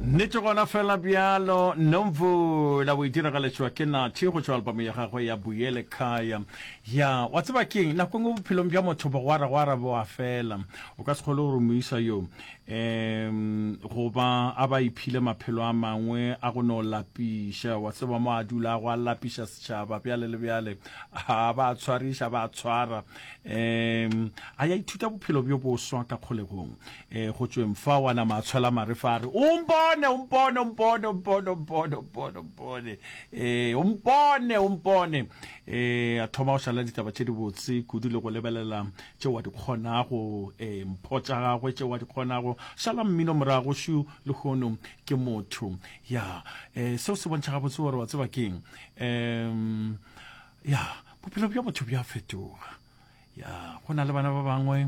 Nnete gona fela bjalo, Nomvu la o e diragaletšwa ke Nathi go tšwa albamo ya gagwe ya Buyele Kaya. Ya, wa tseba keng, nako engwe bophelong bja motho bogwaragwara bo a fela. O ka se kgole gore moisa yo um goba a ba iphile maphelo a mangwe a go no lapiša. Wa tseba mo a dulago a lapiša setšhaba bjale le bjale, a ba a tshwariša, a ba a tshwara. Um a ya ithuta bophelo bjo boswa ka kgolegong. E, go tšweng fa wa nama a tshwela mare fa a re o mpone o mpone o mpone o mpone o mpone o mpone o mpone e o mpone o mpone e a thoma go šala ditaba tše dibotse kudu le go lebelela tše wa di kgonago e mpho tša gagwe tše wa di kgonago šala mmino morago šu le gono ke motho ya e seo se bontšha gabotse gore wa tseba keng um ya bophelo bja motho bja fetoga ya go na le bana ba bangwe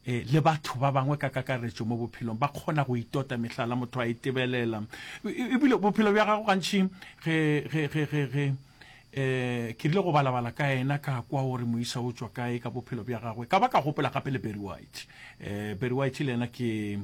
e, le batho ba bangwe ka kakaretšo mo bophelong ba kgona go itota mehlala motho a e tebelela ebile bophelo bja gago gantšhi ge ge ge ge ge eh ke rile go balabala ka ena ka kwa o re moisa o tswa kae ka bophelo bja gagwe ka ba ka gopola gape le berry white eh berry white le ena ke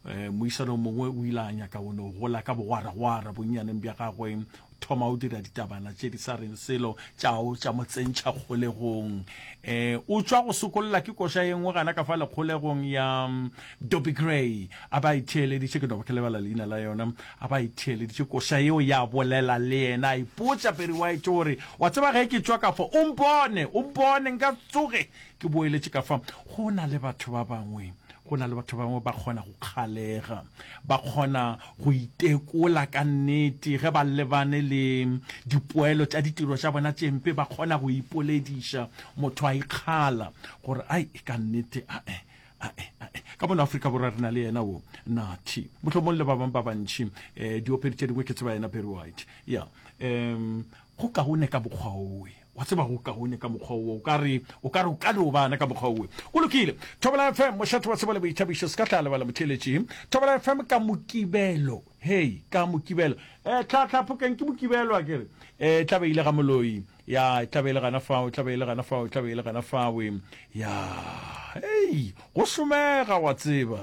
eh, moisa lo mongwe o ile a nyaka o no gola ka bogwaragwara bonnyaneng bja gagwe thoma o dira ditabana tše di sa reng selo tšao tša mo tsentšha kgolegong um o tšwa go sokolla ke koša ye nngwe gana ka fa lekgolegong ya mm, doby gray a ba itheeleditše ke dobo ke lebala leina la yona a ba itheeleditše koša yeo ya bolela le yena a ipotša peri wa ete gore wa tseba ge ke tšwa ka fa o mpone o mpone nka tsoge ke boeletše ka fa go na le batho ba bangwe Go na le batho ba bangwe ba kgona go kgalega, ba kgona go itekola ka nnete ge ba lebane le dipoelo tša ditiro tša bona tše mpe. Ba kgona go ipolediša, motho a ikgala gore, Ai, ka nnete, ae, ae, ae. Ka mono Afrika Borwa re na le yena wo Nathi, mohlomong le ba bangwe ba bantši. Um, diopedi tše dingwe ke tseba yena Barry White. Ya, um, go kaone ka bokgwaoe. Wa tseba go kaone ka mokgwa wo, o ka re, o ka re o ka no ba na ka mokgwa wo. Go lokile. Thobela FM, mošate wa tsebo le boithabišo, se ka tla lebala motheeletši. Thobela FM ka Mokibelo. Hei, ka Mokibelo. Eh, tla, tla, Phokeng, ke Mokibelo a ke re. Eh, e tla be e le ga Moloi. Ya, e tla be e le gana fao, e tla be e le gana fao, e tla be e le gana fawe. Ya, hei, go šomega, wa tseba.